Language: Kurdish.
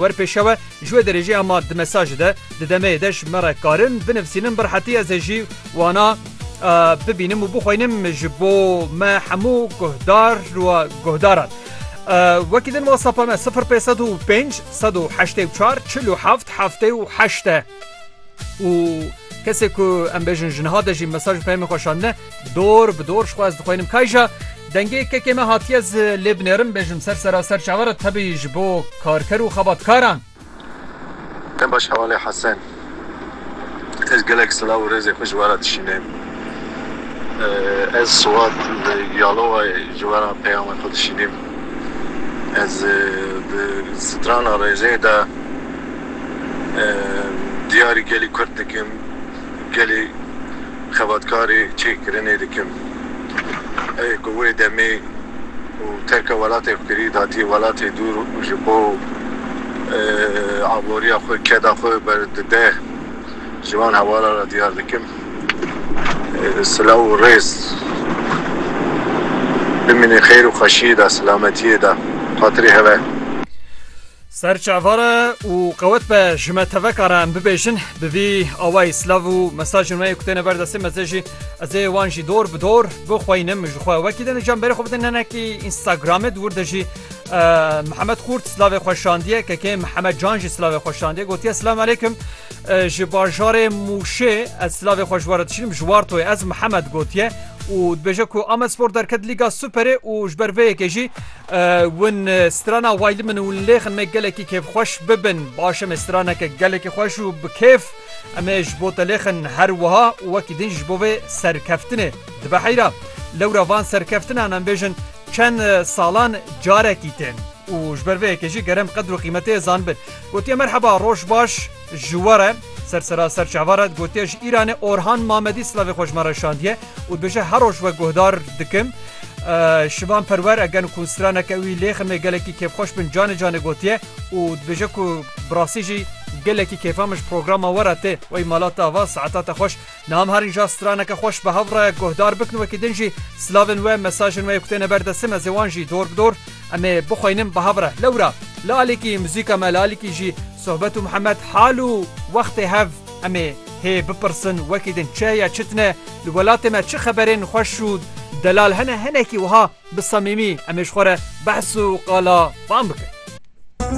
Wer pêşewe ji wê derêjeya ma di mesajê de di demeyê de ji me re karin binivsînin bi rehetî ez ê jî wana bibînim û bixwînim ji bo me hemû guhdar û guhdaran. Wekî din WhatsApp-a me sifir pênc sed û pênc sed û heştê û çar çil û heft heftê û heşt e û kesê ku em bêjin ji niha de jî mesaj û peyamên xwe şandine Dor bi dor xwez dixwînim kayja dengê kekê me hatiye ez lê binêrim bêjim ser seraser çavara tebî ji bo karker û xebatkaran. Te baş hewale Hesen. Ez gelek silav û rêzê xwe ji we re dişînêm. Ez Suat li Yalowayê ji we re peyama xwe dişînêm. Ez di strana rêzê de diyarî gelî Kurd dikim. gelê xebatkarê çêkirinê dikim. Evê ku wê demê û terka welatê xwe kirî datiye welatê dûr û ji bo aboriya xwe, keda xwe berdide ji wan hewalan re diyar dikim. Silav û rêz. Bimînin xêr û xweşiyê de, silametiyê de. Xatirê hev e. Ser çava re û qewet be ji me teveka re em bibêjin bi vî awayî silav û mesajên me yê ku têne ber destê me zê jî ez ê wan jî dor bi dor bixweynim min ji xwe wekî din rica min berê xwe bidin hinekî Instagramê di wir de jî Mihemed Qurt silavê xwe şandiye kekê Mihemed Can jî silavê xwe şandiye gotiye Silam Aleykum ji bajarê Mûşê ez silavê xwe ji we re dişînim ji Wartoyê ez Mihemed gotiye û dibêje ku Amedspor derket Lîga Superê û ji ber vê yekê jî Win strana wayli min û lêxin me gelekî kêfxweş bibin. Baş em ê straneke gelekî xweş û bi kêf em ê ji bo te lêxin her wiha û wekî din ji bo vê serkeftinê. Dibe heyra. Lewra van serkeftinan em bêjin çend salan carekî tên û ji ber vê yekê jî gerem qedr û qîmetê zanibin. Gotiye merheba, roj baş. Ji we re sersera ser çava re gotiye ji Îranê Orhan Mamedî silavê xwe ji me re şandiye û dibêje her roj we guhdar dikim. Şivan Perwer eger ku straneke wî lê ximê gelekî kêfxweş bin canê canê gotiye û dibêje ku bi rastî jî gelekî kêfa min ji programa we re tê. Wey malata ava saeta te xweş. Niha em harin ja straneke xweş bi hev re guhdar bikin wekî din jî silavên we mesajên we kutêne ber destê me zê wan jî dor bi dor em ê bixweynin bi hev re lewra li alîkî muzîka me li alîkî jî sohbet û mihemet hal û wextê hev em ê hê bipirsin wekî din çi heye çi tune li welatê me çi xeberên xweş û delal hene hinekî wiha bi samîmî em ê ji xwe re behs û qala wan bikin.